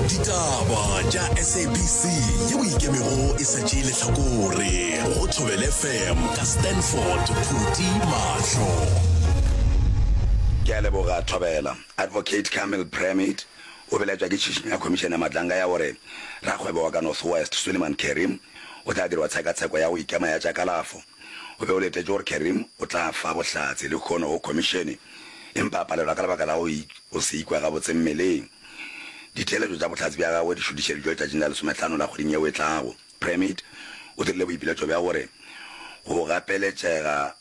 ditaba tša sabc ye o ikemego e sa tšee lehlakore go thobele fm ka stanford phuti mahlo ke a leboga thobela advocate camel premid o belaetswa ke tšhišinyo ya khomišene ya matlanga ya gore rakgwebo wa ka north west suleman kerim o tla dirwa tshekatsheko ya go ikema ya tša kalafo o be o letetše gore kerim o tla fa bohlatse le kgono go khomišene empa a palelwa ka lebaka la go O se ikwe gabotse mmeleng. Ditheeletšo tša bohlatse bja gagwe di šutišeditšwe letšatšing la lesometlhano la kgweding yeo e tlago. Premid o dirile boipiletšo bja gore go gapeletšega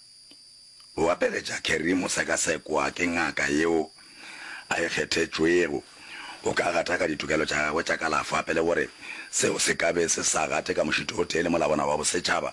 go gapeletša Kerry mo sekasekwa ke ngaka yeo a e kgethetšwego go ka gataka ditokelo tša gagwe tša kalafo a pele gore seo se ka be se sa gate ka mošito o tee le Molabona wa Bosetšhaba.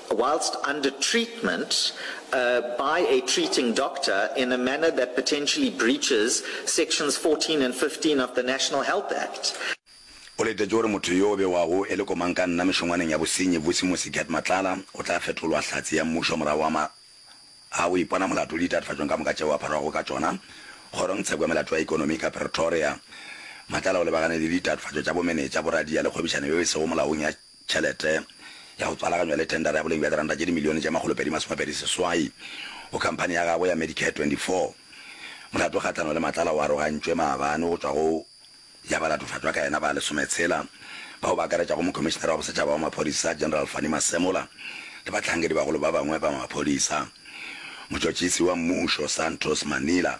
whilst under treatment uh, by a treating doctor in a manner that potentially breaches sections 14 and 15 of the National Health Act. O letetše gore motho yo o bewago e le komankanna mešongwaneng ya bosenyi Vusimusi Gert Matlala o tla fetolwa hlatse ya mmušo morago wa ma a go ipona molato le ditatofatšong ka moka tšeo a pharwago ka tšona kgorong tsheko ya melato ya ekonomi ka Pretoria. Matlala o lebagane le ditatofatšo tša bomenetša, boradia le kgwebišano yeo e sego molaong ya Tšhelete ya go tswalaganywa le thendara ya boleng bja diranta tše dimilione tše makgolopedi masomepedi seswai go khamphani ya gagwe ya Medicare 24. Molato kgahlano le Matlala o arogantšwe maabane go tšwa go ya ba latofatšwa ka yena ba lesometshela, bao ba akaretšago Mokhomišinara wa Bosetšhaba wa Maphodisa General Fannie Masemola le bahlankedi bagolo ba bangwe ba maphodisa. Motšotšisi wa mmušo Santos Manila,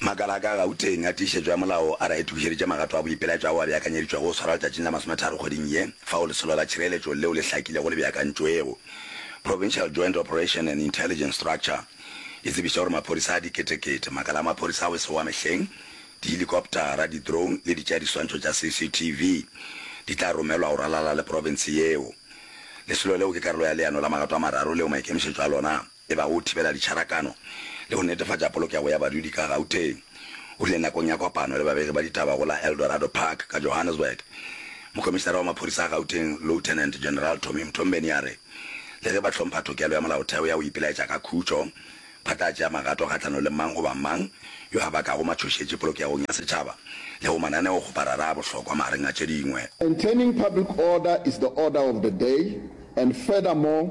Makala a ka Gauteng a tiišetšo ya molao a re a itokišeditše magato a boipelaetšo ao a beakanyeditšwego go swarwa letšatšing la masometharo kgweding ye, fao lesolo la tšhireletšo leo le hlakilego le beakantšwego. Provincial Joint Operation and Intelligence Structure e tsebiša gore maphodisa a diketekete, makala a maphodisa a go se wa mehleng, dihelikoptara, di-drone le ditšeadiswantšho tša CCTV di tla romelwa go ralala le profense yeo. Lesolo leo ke karolo ya leano la magato a mararo leo maikemišetšo a lona e ba o thibela ditšharakano le go netefatša polokego ya badudi ka Gauteng. O rile nakong ya kopano le babegi ba ditaba go la Eldorado Park ka Johannesburg, Mokomišinara wa Maphodisa a Gauteng Lieutenant General Tommy Mthombeni a re le ge ba hlompha tokelo ya molaotheo ya go ipelaetša ka khutšo, ba tla tšea magato kgahlano le mang goba mang yo a bakago matšhošetši polokegong ya setšhaba le go mananeo go marara a bohlokwa magareng a tše dingwe. Maintaining public order is the order of the day and furthermore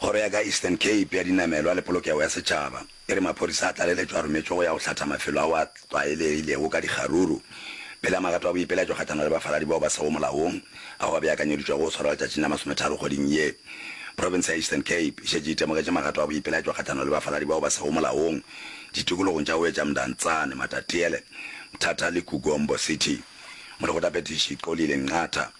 Kgoro ya ka Eastern Cape ya Dinamelwa le Polokego ya Setšhaba e re maphodisa a tlaleletšo a rometšwe go ya go hlatha mafelo ao a tlwaelegilego ka dikgaruru pele magato a boipelaetšo kgahlano le bafaladi bao ba sego molaong ao a beakanyeditšwego go swarwa letšatšing la masometharo kgweding ye. Profense ya Eastern Cape e šetše e temogetše magato a boipelaetšo kgahlano le bafaladi bao ba sego molaong ditikologong tša Oeja, Mdantsane, Matatiele, Mthatha le Kugombo City. Molekgotaphethiši Xolile Nqatha.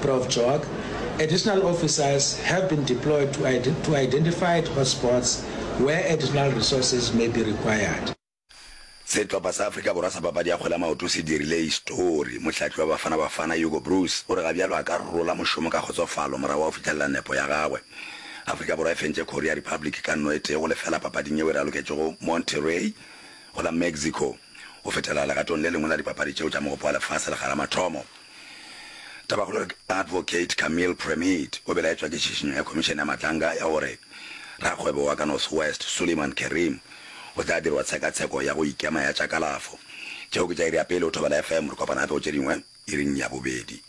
Prof Joag, Additional officers have been deployed to to identified hotspots where additional resources may be required. Sehlopha sa Afrika Borwa sa papadi ya kgwele ya maoto se dirile histori. Mohlahli wa Bafana Bafana, Hugo Broos, o re ga bjalo a ka rola mošomo ka kgotsofalo morago wa go fihlelela nepo ya gagwe. Afrika Borwa e fentše Korea Republic ka nno e tee go lefela papading yeo e raloketšwego Monterrey go la Mexico go fetela legatong le lengwe la dipapadi tšeo tša Mogopo wa Lefase le Garamathomo. Tabakgolo re Advocate Camille Premit o belaetšwa ke tšhišinyo ya Khomišene ya Matlanga ya gore rakgwebo wa ka North West Suleiman Kerim o tla dirwa tshekatsheko ya go ikema ya tša kalafo. Tšeo ke tša iri ya pele go Thobela FM, re kopana gape go tše dingwe iring ya bobedi.